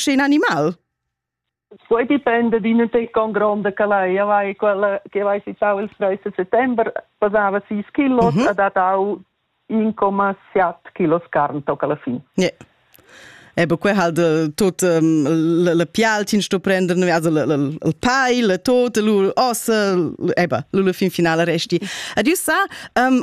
in animal? Poi dipende d'in con gronda che lei aveva quella che aveva citau il 13 settembre pesava 6 kg uh -huh. ha datau 1,7 kg carn tocca alla fine. Yeah. Ebe que halt tot um, le, le pialtin sto prender also le, le, le pai, le tot, lu ossa, ebe, lu le fin finale resti. Adieu sa, um,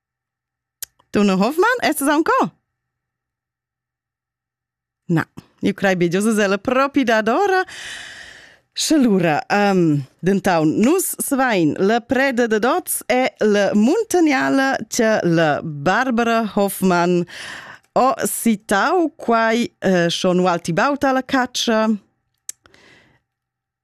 Dunne Hoffmann, est es ancò? Na, iu crei be giò sesella propi dadora. Sche lura, um, dentaun, nus svain la preda da dots e la muntagnala che la Barbara Hoffmann ho citau quai uh, schon ualti baut alla caccia.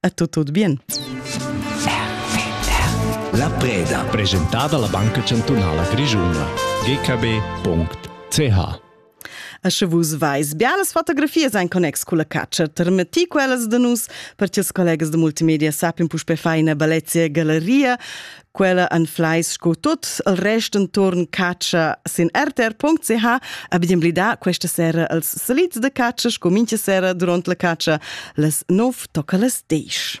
è tutto tut bien. La preda. Presentada la Banca Chantunala Grischuna. gkb.ch A sche vus vais bialas fotografias ein connex cu la catscha, termeti quellas da nus, per ti colegas de multimedia sappin puspe fai ina balezia galeria, Quella anfleis sco tut el rest enturn catscha sin rtr.ch a bidem blida questa sera als salits de catscha sco mincha sera durant la catscha las 9 tocca las 10.